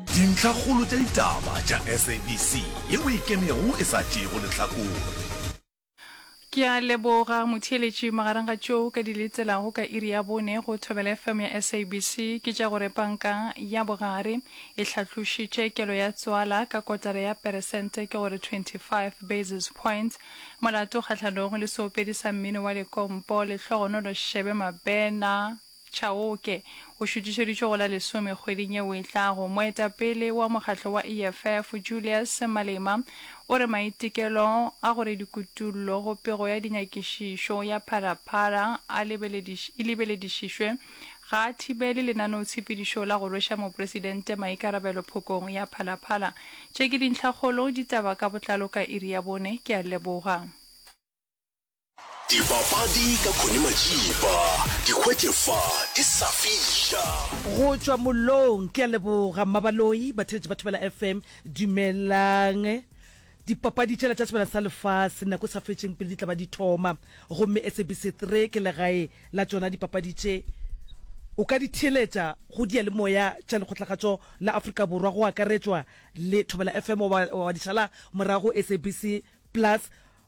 Dintlhakgolo tša ditaba tša SABC ye o e kemego e sa tšeego lehlakore. Ke a leboga, motheeletši. Magareng ga tšeo ka di letelago ka iri ya bone go Thobela FM ya SABC ke tša gore Panka ya Bogare e hlatlošitše kelo ya tswala ka kotara ya peresente, ke go re 25 basis points, molato kgahlanong le seopedi sa mmino wa lekompo, Lehlogonolo Shebe Mabena. Chauke, o šutišeditšwe go la lesome kgweding yeo e tlago. Moetapele wa mokgatlo wa EFF, Julius Malema, o re maitekelo a go re dikutullo go pego ya dinyakišišo ya Pharaphara a lebelediš, e lebeledišišwe ga a thibele lenaneotshepedišo la go rweša Mopresidente maikarabelo phokong ya Phalaphara. Tše ke dintlhakgolo, ditaba ka botlalo ka iri ya bone. Ke a leboga. Dipapadi ka Connie Majiba, di hwetše fa di sa fiša. Go tšwa mollong, ke a leboga Mmabaloi, batheletši ba Thobela FM, dumelang. Dipapadi tša Letlatsebana sa Lefase nako e sa fetšeng pele di tla ba di thoma, gomme SABC 3 ke legae la tšona dipapadi tše. O ka di theeletša go diyalemoya tša Lekgotlakgatšo la Afrika Borwa, go akaretšwa le Thobela FM, goba wa di šala morago go SABC Plus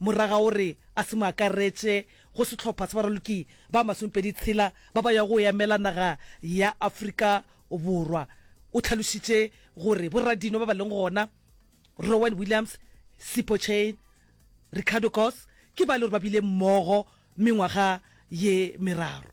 Morwa ga o re a se mo akaretše go sehlopha sa baraloki ba masomepedi tshela ba ba yago go emela naga ya Afrika Borwa. O tlhalošitše gore boradino ba ba leng gona, Rowen Williams, Sipho Chaine, Ricardo Goss, ke ba e le gore ba bile mmogo mengwaga ye meraro.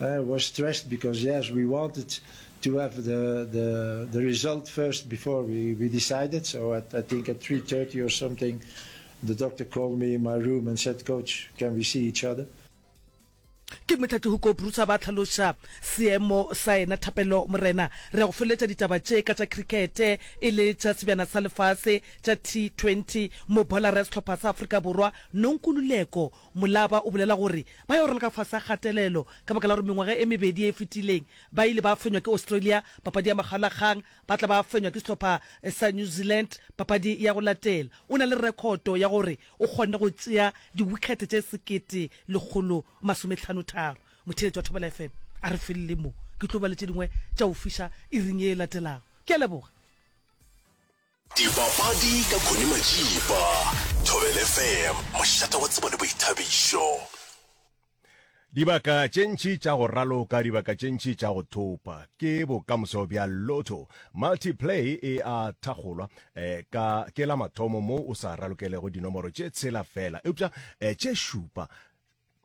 I was stressed because yes, we wanted to have the the, the result first before we, we decided. So at, I think at 3:30 or something, the doctor called me in my room and said, "Coach, can we see each other?" ke motlatli go koprusa ba tlhaloša seemo sa ena thapelo morena re go feletša ditaba tše ka tša crickete e le tša sebjana sa lefase tša t20 mobolara ya sehlopha sa afrika borwa nonkululeko Molaba o bolela gore ba yo rala ka fase ga kgatelelo ka baka la gore mengwaga e mebedi e e fetileng ba ile ba fenywa ke Australia papadi ya makgalakgang, ba tla ba fenywa ke sehlopha sa New Zealand papadi ya go latela. O na le rekhoto ya gore o kgonne go tšea diwikhethe tše sekete lekgolo masomehlanotaro. Motheeletši wa Thobela FM a re felle mo, ke tlo ba le tše dingwe tša go fiša iring ye e latelago. Ke a leboga. Dipapadi ka Connie Matšipa, Thobela FM, mošate wa tsebo le boithabišo. Dibaka tše ntši tša go raloka, dibaka tše ntši tša go thopa ke bokamoso bja Lotto. Multiplay e a thakgolwa eh, ka ke la mathomo moo o sa ralokelego dinomoro tše tshela fela, eupša eh, tše šupa.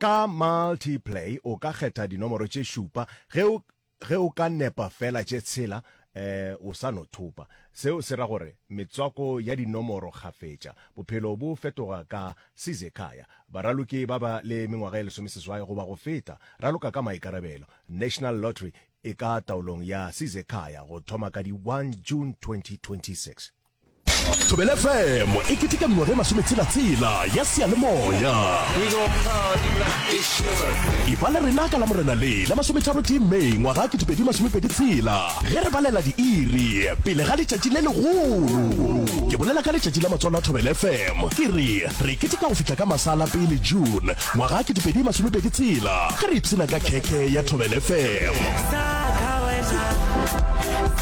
Ka Multiplay o ka kgetha dinomoro tše šupa ge o Ge o ka nepa fela tše tshela, um o sa no thopa. Seo se ra gore metswako ya dinomoro kgafetša. Bophelo bo fetoga ka Sizekhaya. Baraloki ba ba le mengwaga ye lesomeseswai goba go feta, raloka ka maikarabelo. National Lottery e ka taolong ya Sizekhaya go thoma ka di 1 June 2026. Thobela FM e keteka mengwaga e masometshela-tshela ya seyalemoya. E ba le rena ka la Morena le la masometharo tee May ngwaga 2026 ge re balela diiri pele ga letšatši le legolo. Ke bolela ka letšatši la matswalo a Thobela FM ke re re keteka go fihla ka masala pele June ngwaga 2026 ge re ipshina ka khekhe ya Thobela FM.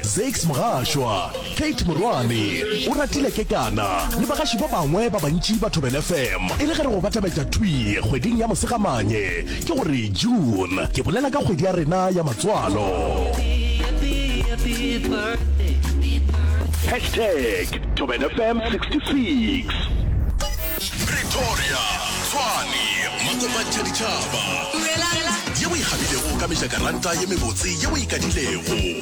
Zakes Mgashwa, Kate Morwane, Oratile Kekana le bagaši ba bangwe ba bantši ba Thobela FM. E le ge re go batabetša thwi kgweding ya Mosegamanye, ke go re June, ke bolela ka kgwedi ya rena ya matswalo. Hashtag Thobela FM 66. Pretoria, Tshwane, Makopanthaditšhaba. Ye o e kgapilego ka mejakaranta ye mebotse ye o e kadilego.